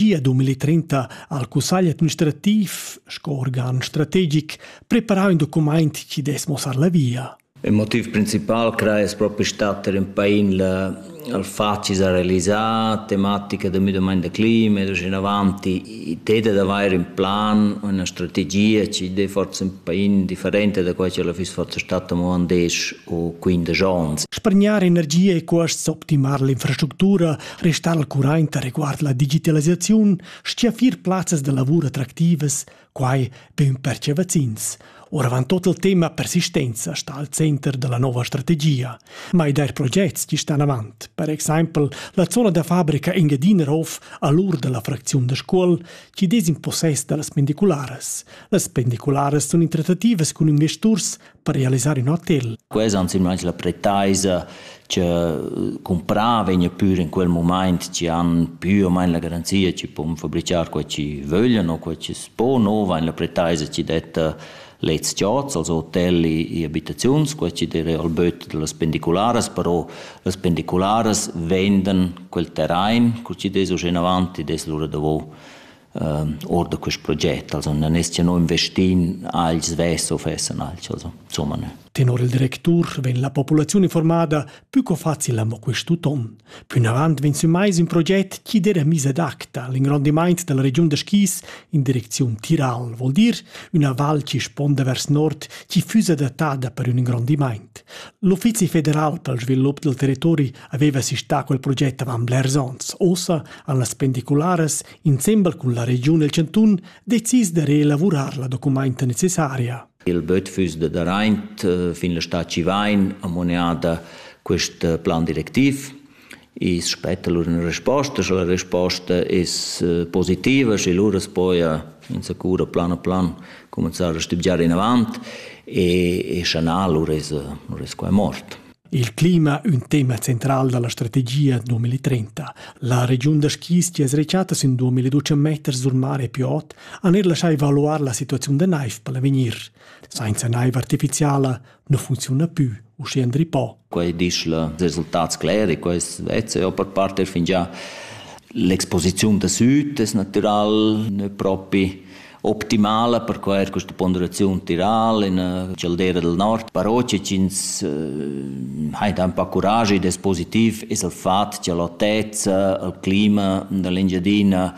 Gia 2030 ha il cussagl administrativ sco organ strategic preparau in document chi dess mossar la via. Il motiv principal crai es propi stat er in pain il facil da realizzare tematica del müdamaint da clima ed uscin avanti ted da avair in plan, una strategia ci dei forse un pain differente da quai che la fiss forse stata mo an 10 o 15 ans. Spargnar energia e costs optimar l'infrastructura restà al curraint reguard la digitalisaziun stia fir plazzas da lavur attractivas, quai be ün perche vaccins. Oravant tot il tema persistenza sta al center della nova strategia, ma i der progets chi stan avant, per exempel la zona da fabrica Engedinerhof all'ur della fracziun da Scuol, chi des in possess da las pendicularas. Las pendicularas sun in trattativas cun investors per realisar in hotel. Questa insomma la pretaisa che comprava vegna pur in quel moment ci han più o meno la garanzia ci può fabbricare quel ci vogliono o quel ci può no va in la pretaisa ci detta lez chats als hotelli e abitaziuns quel ci dire al böt delle spendicolares però le spendicolares vendan quel terrain col ci des o in avanti des lura dopo Or da quist proget also na nescha no investin agl svess o fessan alch also insomma ne. Tenor il directur vegn la populaziun informada pü co facil amo quist'uton. Plünavant vegn sü mais ün proget chi d'eira miss ad acta a l'ingrondimaint da la regiun da skis in direcziun Tiral, vol dir üna val chi sponda vers nord chi füss adattada per ün ingrondimaint. L'Uffizi federal pel svilup del territori aveva sistà quel proget avant blers ons. Ossa han las pendicularas insembel cun la regiun el Cantun decis de reelavurar la documenta necessaria. Il böt füss de daraint eh, fin la sta Civain amoneada quest eh, plan directiv. I spetta lur una risposta, sche la risposta es eh, positiva, sche lura poia in sicura plan a plan cominciare a stibgiare in avant e, e shanà lura es, lura es qua è mort. Il clima ün tema central da la strategia 2030. La regiun da skis chi es rechatta sün 2012 meters sur mare più ot han eir laschà evaluar la situaziun da naiv per l'avegnir. Sainza naiv artificiala nu funcziuna pü, uschè Andri Po. Quai disch la resultats cleri, quais vezza per parter fingià. L'exposiziun da süd es natural, ne propi optimala per quai questa ponderaziun tiral in uh, caldera del nord. Però che ins uh, ha da un po' courage ed è positiv es il fatto che l'altezza, il clima dell'Engiadina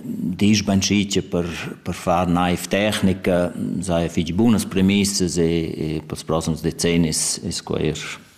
disch ben schice per, per far naiv tecnica, sei fich bunas premissas e, e per prossers decennis es quair.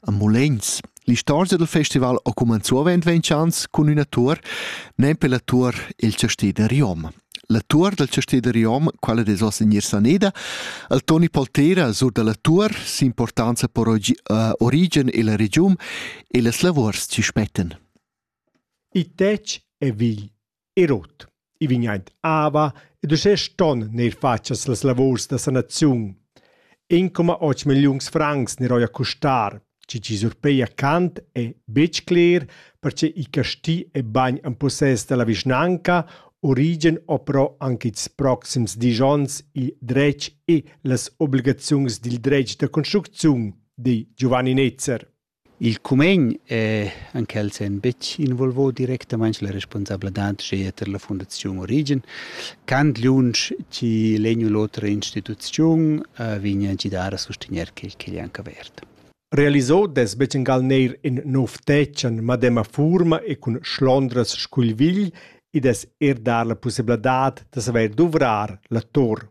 a Mulegns. L'istorgia dal festival ha cumenzù avend ventschans cun üna tour, nempe la tour Il Chastè da Riom. La tour dal Chastè da Riom, quella des oss in Saneda, al Toni Poltera sur da la tour s'importanza per origen e la regiun e las lavurs ci spettan. I tec e vigl. e rot. I vegn aint ava ed uschè ston neir fatschas las lavurs da sanaziun. 1,8 milliuns francs neroia custar, chi chi surpeia Kant è betg cler, perche i casti e bagn en possess da la vischnanca origen o però anche ils proxims dis onns il dretg e las obligaziuns dil dretg da construcziun, di Giovanni Netzer. Il cumegn è en quel senn betg involvò directamaing la responsabladad sche eir la fundaziun Origen. Quant lünch chi l'he gnü l'otra instituziun vegna a gidar a sustegner quel ch'igl è anche avert. Realisò dess bett'ingal neir in nouv tetg an madema fuorma e cun schlondras scu'l vigl, id dess eir dar la pussebladad da savair duvrar la tor.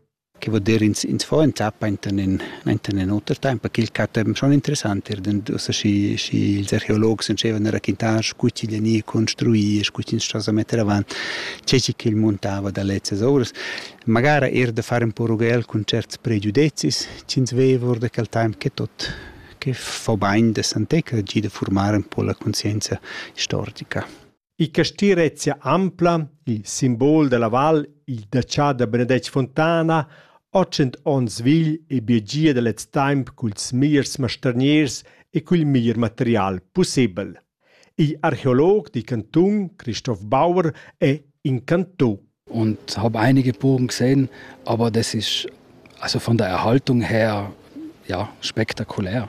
Che vuol dir ins ins fa ün tap enten ün enten ün oter temp, perché il catem schon interessant ir dend ussa schi schi ils archeologs entschevan da raquintar scu ch'igl gnir construì e scu ch'ins sto sa metter avant, che chi ch'el muntava da lezzas ovras. Magara eir da far ün po rughel cun certs pregiudezis ch'ins veva our da quel temp che tot che fa bain da santezza, gir da furmar ün po la conscienza istorica. Il casti rezia ampla, il simbol dalla val, il detschà da Benedetg Fontana, otschent onns vegl e biegia da lez temps culs mirs mastergners e cul mir material pussebel. Il archeolog di cantun Christoph Bauer è incanto. Und habe einige Burgen gesehen, aber das ist also von der Erhaltung her ja spektakulär.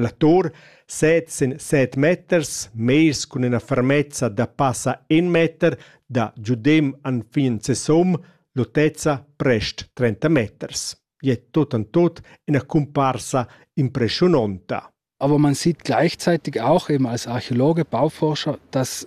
La tur set sin set meters, mez cun ina fermezza da passa in meter da giudem enfin sesum, l'autezza prest 30 meters. Ì è tut en tut ina cumparsa impressiunonta. Aber man sieht gleichzeitig auch eben als Archäologe, Bauforscher, dass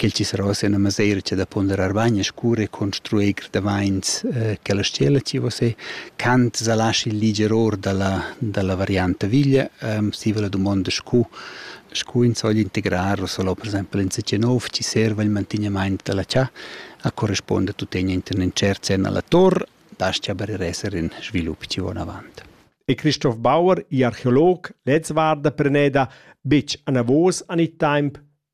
Quel chiserò sia üna maseira cha da ponderar bain e scur e construir grevamaints eh, che la stella chi vo se. Kant sa laschi liger or da la, da la varianta viglia. Um, stiva la dumonda scu, scu ins vogl integrar o solo per esempio in CC9 chi serva il mantignamaint da la chà a corrisponde tuttegna inter incerts sen alla tor, das-cha per esser in svilup chi von avant. E Christoph Bauer, archeolog, lez varda preneda, bitg anavos an il temp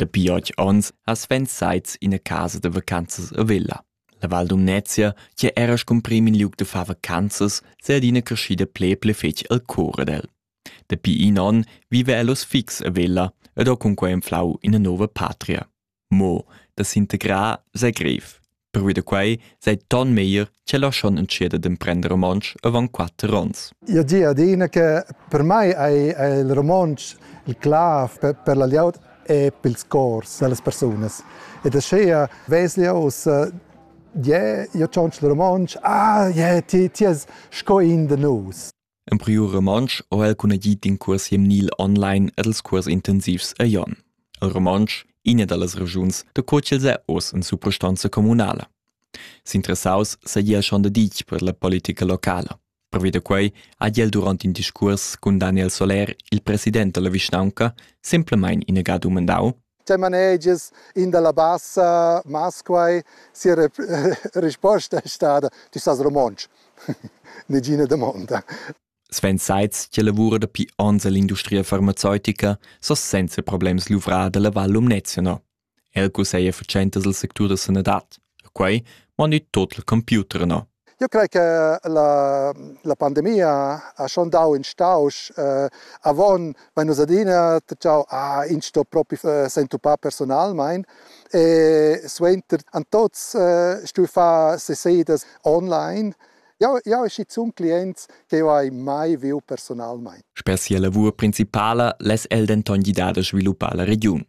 Dapi otg onns ha Sven Seitz ina casa da vacanzas a Vella. La Val Dumnezia, che era scumprìm in liug da far vacanzas, sei adina creschida ple ple fetg al cor ad el. Dapi in onn vive el oz fix a Vella ed ho cunquei enflau ina nova patria. Mo da s'integrar sei grev. Pervi da quai sei ton meglier che la schon entschieda d'emprender romontsch avant quatter onns. Io di adina che per mai è il romontsch il clav per, per la liaud e per ils cors delle persone. Ed aschia veslia ussa je, io tschonsch il romontsch, ah, je, ti, ti es sco in de nus. En priu romontsch ho el cunagit in cuors hemnil online ed els cuors intensivs a Jon. El romontsch, iina dallas regiuns da co ch'els è oz in suprastanza communala. S'interessaus seigi el schon da ditg per la politica locala. Pervi da quei ha el durant in discuors cun Daniel Soler, il president dalla vischnaunca, semplamein inagà dumandau, Te manegias in dalla bassa masquai sia risposta è stada ti sas romontsch. Negina domanda. Sven Seitz, che lavora dapi onns all'industria farmaceutica, so senza problems luvrà dalla Val Lumnezia. El cuseia fatschentas al sectur da sanadad. Quei mani tot il computer no. Io crei che la, la pandemia ha schon dau in stausch. Eh, avon vein nus adina tgau, ah, ins sto propi eh, s'entupar personalmein. E suenter han tots eh, stuiu far sesidas online. Jau, jau schizun clients che io hai mai viu personalmein. Sper sia lavur principala less el denton gidar da sviluppar la regiun.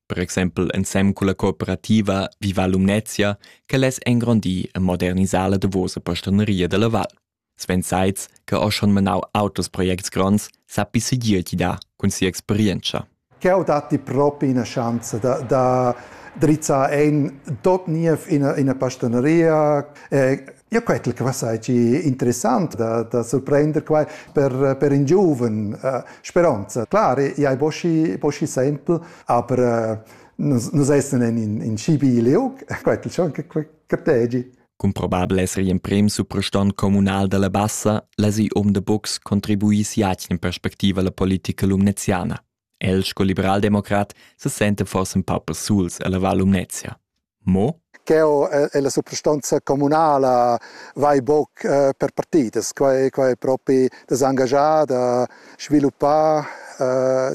Per exempel ensem culla cooperativa Viva Lumnezia che less engrondir e modernisar la davosa postaneria dalla val. Sven Seitz, che ha schon menau auters projects gronds, sappi segir ti dar cun sia experienza. Che ho datti propi ina schanza da, da drizzar en tot niev ina, ina pastaneria, eh, Ja, quetel che va sagi interessant da, da surprender quai per, per in giuven uh, speronza. Clar, i hai boschi, boschi sempel, aber uh, nus, nus essen in, in schibi liug, quetel schon che cartegi. Cum probabel esser emprem supraston comunal dalla Bassa, la si om de box contribuis jatgn in perspectiva la politica lumneziana. El sco liberaldemocrat se senta forsa ün pa persuls ella Val Lumnezia. Mo? Ch'eau e la suprastanza comunala vai boc per partidas. Quai, quai è propi da s'angagiar, da sviluppar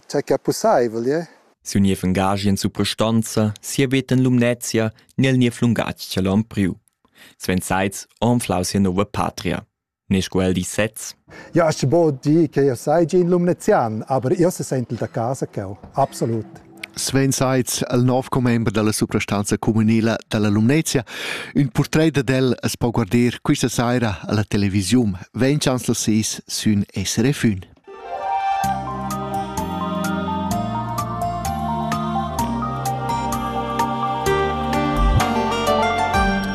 tge che è pussaivel. Yeah? Siu niev engagi in suprastanza, sia veta in Lumnezia, nel niev lungatg che l'on priu. Sven Seitz anflau sia nova patria. Nesch quel di sez? Ja, as bod dir che io saigi in Lumnezian, aber io se sentel da casa cheu, absolut. Sven Seitz, il nov commember dalla suprastanza comunila dalla Lumnezia. Un portret ad el as po guarder quista saira alla televisiun. Ven chancel sis sün SRF 1.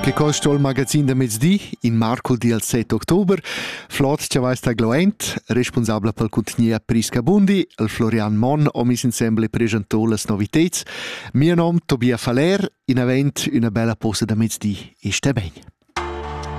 Che costa il magazin da mezdi in marco dal 7 october? Flot Chavais da Gloent, responsabla per cuntgnia Prisca Bundi, il Florian Monn ho mis insembel e presentò las noviteds. Mio nom Tobias Faller, in avent üna bella posta da mezdi e sta bene.